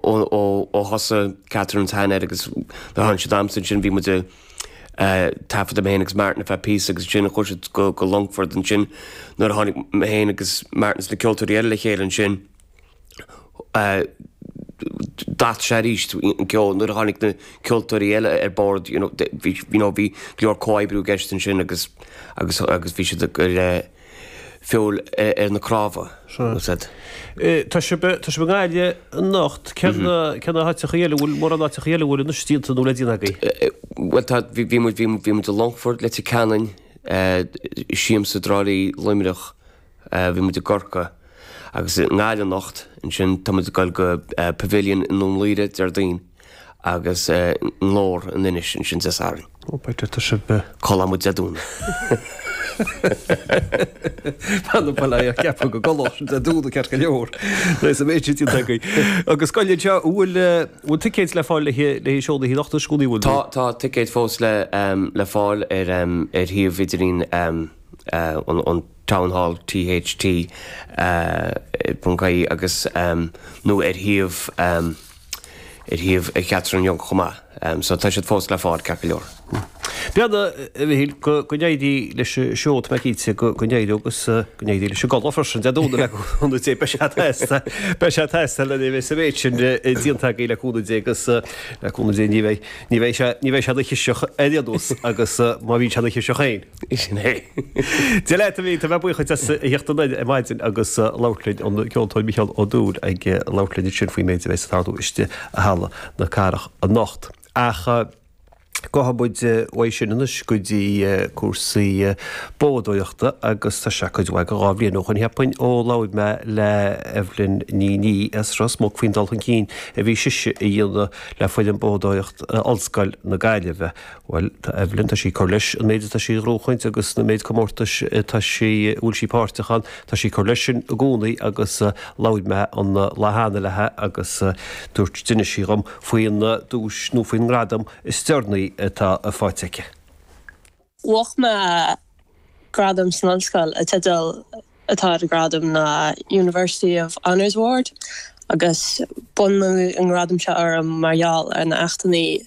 ó thosaigh Catherine is shean air agus nuair a tháinig siad amsa ansin bhí muid taifeadta, mé féin agus Martin ar feadh píosa agus ansin chuaigh siad go Longfort ansin nuair a tháinig mé féin agus Martin is na ceoltóirí eile le chéile ansin d'athraigh sé aríst an ceol nuair a tháinig na ceoltóirí eile ar bord, you know, bhí, you know, bhí go leor comhoibriú i gceist ansin agus, agus, agus bhí siad ag. feoil ar na crámha. Sea. Tá sibh i nGaillimh anocht. Céard na háiteachaí eile a bhfuil, mórán áiteachaí eile a bhfuil déanta nó le déanamh agaibh? Bhuel tá, bhí muid, bhí muid i Longfort, Leitir Ceanainn, Siamsa, Trá Lí, Luimneach, bhí muid i gCorca agus i nGaillimh anocht. Ansin tá muid ag dul go Pavilion i nDún Laoghaire Déardaoin. agus i nGlór in Inis ansin Dé Sathairn. Ó, b'fhéidir tá sibh. Codladh muid Dé Domhnaigh. Bhí mé ag ceapadh go gcodlódh sibh Dé Domhnaigh ceart go leor nuair is a bheidh sibh ag tiontú againn. Agus scoil anseo, bhfuil ticéid le fáil le seó na hoíche anocht is gúnaí a bhfuil. Tá ticéid fós le fáil ar shuíomh idirlín an Town Hall, THT ponc ie, nó ar shuíomh. ar shuíomh Catherine Young chomh maith, so tá siad fós le fáil ceart go leor. Bhuel, a Mhichíl, go n-éirí leis an seó, tá mé cinnte go n-éireoidh, agus go n-éirí leis an gcodladh freisin, Dé Domhnaigh le cúnamh Dé, beidh tú sásta, beidh tú sásta nuair a bheidh an méid sin déanta againn le cúnamh Dé agus le cúnamh Dé ní bheidh, ní bheidh sé, ní bheidh sé ina chiseach ar aon nós agus má bhíonn sé ina chiseach féin. Sin é. Dia leat a Mhichíl, tá mé buíoch díot as a theacht isteach ar maidin agus labhairt linn, an Ceoltóir Micheál Ó Dúill ag labhairt linn ansin faoin méid a bheas ag tarlú istigh i Halla na Cathrach anocht. Ach gabhfaidh muid uaidh sin anois go dtí cúrsaí bádóireachta agus tá sé cuid mhaith go dhá bhliain ó shoin cheapfainn ó labhair mé le Evelyn Ní Nia as Ros Muc faoin dul chun cinn a bhí sise a dhéanamh le foireann bádóireachta Ollscoil na Gaillimhe. Bhuel, tá Evelyn, tá sí ag cur leis an méid atá sí ag gnóthachtáil agus an méid comórtais atá sí, a bhfuil sí páirteach ann, tá sí ag cur leis sin i gcónaí agus labhair mé an lá cheana leithe agus dúirt, d'inis sí dhom faoin duais nó faoin ngradam is deireanaí atá faighte aici. Bhuaigh mé gradam san ollscoil, an teideal atá ar an gradam ná University of Honours Award agus bronnadh an gradam seo orm mar gheall ar na héachtannaí,